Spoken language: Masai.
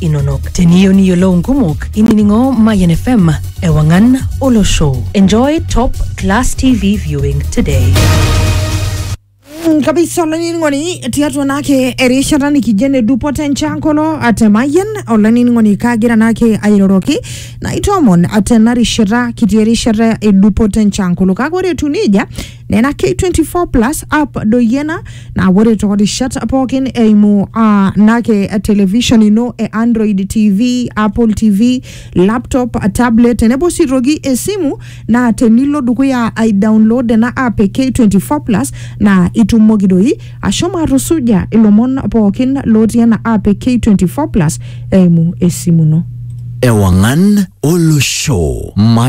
inonok. Teniyieu niyiolou nkumok, inining'o Mayian FM ewang'an olosho. Enjoy top class TV viewing today. Mm, kabisa olainining'oni tiatua naake erishata nikijo ene dupoto enchankolo atemayian olainining'oni kaagira naake airoroki naitoomon tena rishata kitii erishata e dupoto enchankolo kake ore etu nejia nena K24 plus app doyiena naa ore toorishat pookin eimu uh, nake television ino e Android TV, Apple TV, laptop, tablet tenebo sii toki esimu naa tenilo dukuya ai download ena app e K24 plus naa itumoki doi ashomo atusuja ilomon pookin lotii ena app e K24 plus eimu esimu ino. Ewangan Olosho.